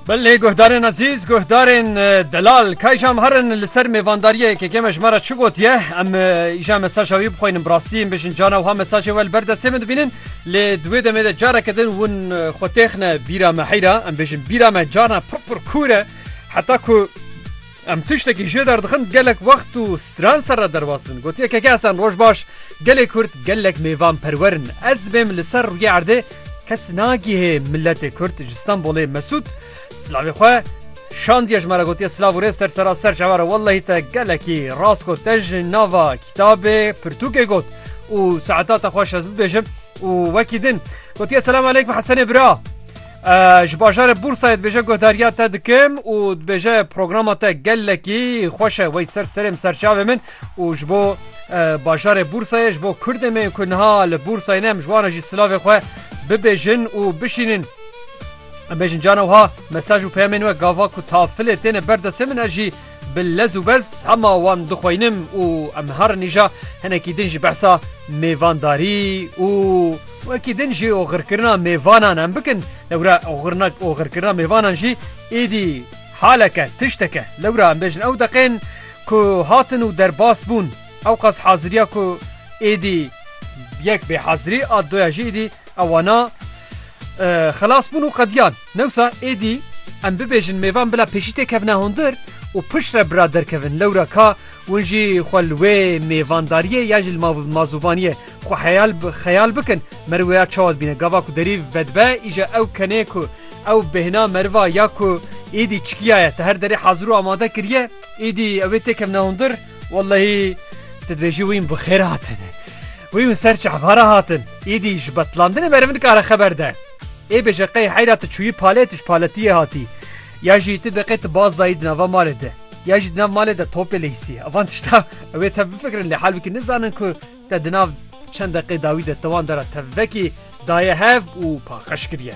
Belê guhdarên ezîz, guhdarên delal kayjam herin li ser mêvandariyê yekekê me ji me re çi gotiye em îja mesaja wî bixwînin bi rastî em bêjin cana wiha mesajê we li ber destê min dibînin lê di wê demê de careke din hûn xwe têxine bîra me heyra em bêjin bîra me carna pir pir kûr e heta ku Em tiştekî jê derdixin gelek wext û stran ser re derbas bin. Gotiye Keke Hesen roj baş, gelê Kurd gelek mêvan perwer in. Ez dibêm li ser rûyê erdê kes nagihê miletê Kurd ji Stenbolê Mesûd silavê xwe şandiye ji me re gotiye silav û rêz ser sera ser çawa re wellehî te gelekî rast got te ji nava kitabê pirtûkê got û saeta te xweş ez bibêjim û wekî din gotiye selam aleykum Hesenê bira. Ji bajarê Bursayê dibêje guhdarîya te dikim û dibêje programa te gelekî xweş e wey ser serê min serçavê min û ji bo bajarê Bursayê ji bo Kurdê me ku niha li Bursayê ne em ji wan re jî silavê xwe bibêjin û bişînin. Em bêjin cana wiha mesaj û peyamên we gava ku tafilê têne ber destê min ez jî Bi lez û bez hema wan dixweynim û em herin îja hinekî din ji behsa mêvandarî û wekî din jî oxirkirina mêvanan em bikin. Lewra oxirina oxirkirina mêvanan jî êdî haleke, tişteke. Lewra em bêjin ew deqên ku hatin û derbas bûn ewqas haziriya ku êdî yek bêhazirî a doya jî êdî ewana xilas bûn û qediyan. Newsa êdî em bibêjin mêvan bila pêşî tê kevne hundir û piştre bira derkevin lewra ka win jî xwe li wê mêvandariyê ya jî li mazûvaniyê xwe heyal xeyal bikin meriv ya çawa dibîne gava ku derî vedibe îja ew kenê ku ew bêhna meriva ya ku êdî çikiya ye te her derê hazir û amade kiriye êdî ew ê tê kevne hundir wellehî tu dibêjî wîn bi xêr hatin wî win ser çehbara hatin êdî ji betlandinê meriv nikare xeber de. Ê bêje qey heyra tu çûyî palê tu ji paletiyê hatî ya jî tu biqê tu baz dayî di nava malê de ya jî di nav malê de topê leyisî evan tişta ew ê tev bifikirin lê halwekî nizanin ku te di nav çend deqê dawî de te wan dera tevvekî daye hev û paqij kiriye.